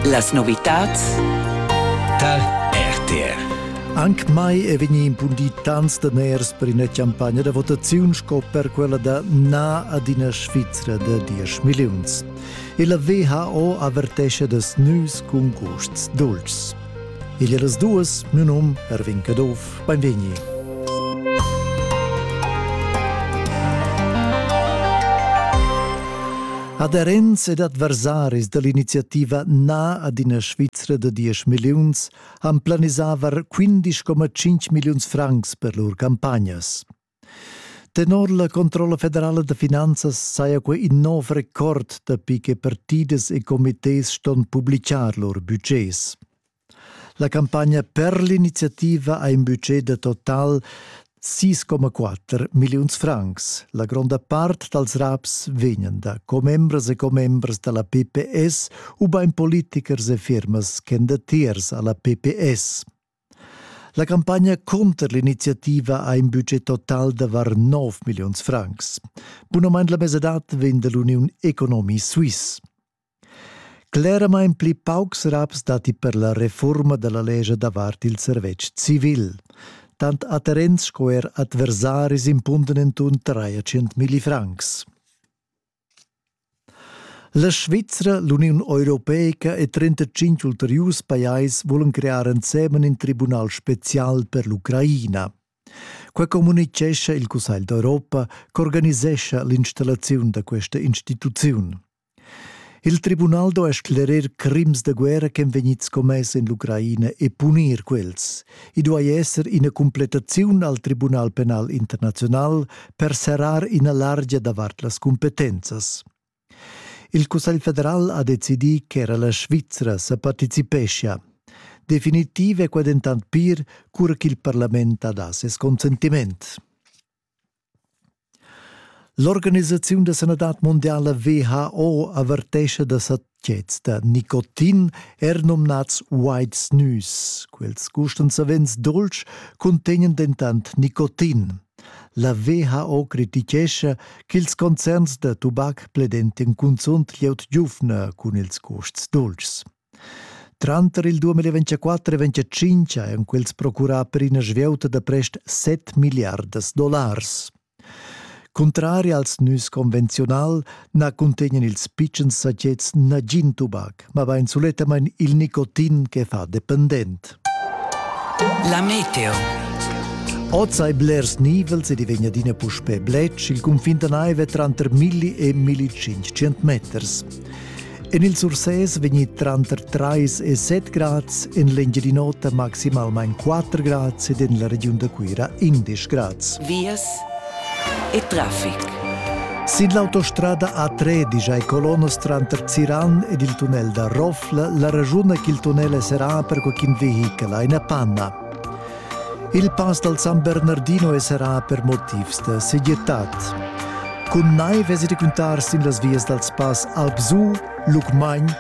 Las novitads tar RTR. Anche mai è vegnì impundì tants daners per ina campagna da votaziun sco per quella da Na ad ina Svizra da 10 milliuns. E la WHO avertescha da nus cun gusts dulcis. Il eras duas, miu num Ervin Caduff, beinvegni. Aderents ed adversaris dall'iniziativa Na ad ina Svizra da 10 milliuns han planisavar 15,5 milliuns francs per lur campagnas. Tenor la Controlla federala da finanzas saja quei in nov record dapi che partidas e comités ston publicar lur budgets. La campagna per l'iniziativa ha in budget da total 6,4 milliuns francs. La gronda part dals raps vegnan da commembras e commembras da la PPS ubain politichers e firmas ch'èn datiers a la PPS. La campagna cunter l'iniziativa ha in budget total da var 9 milliuns francs. Bunamain la mesadad vegn dall'Uniun Economie Suisse. Cleramain pli paucs raps datti per la reforma dalla lescha davart il servetsch civil. Tant atterents sco er adversaris impunden entun 300 francs. La Svizra, l'Uniun europeica e 35 ulteriurs pajais vulan crear ensemen in tribunal special per l'Ucraina. Quai communitgescha il Cussegl d'Europa ch'organisescha l'installaziun da questa instituziun. Il tribunal do a sclerer crims da guerra ch'en vegnids commess en l'Ucraina e punir quels. I duai esser ina completaziun al Tribunal penal internazional per serrar ina largia davart las cumpetenzas. Il Cussegl federal ha decidì ch'era la Svizra sa participeschia. Definitiv è qua dentant pir, cura ch'il parlament ha dà ses consentiment. L'organisaziun da sanadad mundiala WHO avertescha da satgets da nicotin, er numnads White Snus. Quels gustan savens dolç, cuntegnan dentant nicotin. La WHO crititgescha ch'ils concerns da tubac pledentian cunzunt glieud giuvna cun ils custs dolçs. Tranter il 2024 e 2025 han quels procurà per ina svieuta da prest 7 milliardas dollars. Contrari als nus convenziunal na cuntegnan ils pitschens satgets nagin tubac, ma bain sulettamain il nicotin che fa dependent. La meteo. Oz hai blers nivels ed i vegn adina puspè bletsch. Il cunfin da naiv è tranter 1000 e 1500 meters. En il Sursés vegni tranter 3 e 7 grads, en l'Engiadin'Ota maximalmain 4 grads ed en la regiun da Cuira 11 grads. Vias e traffic. Sin l'autostrada A13 ai colonas tranter Ziran ed il tunnel da Rofla la ragiuna ch'il tunnel è serrà per qualcun vehichel ha ina panna. Il pass dal San Bernardino è serrà per motivs da segirtad. Cun naiv vesi da cuntar sin las vias dals pass Alpsu, Lucmagn,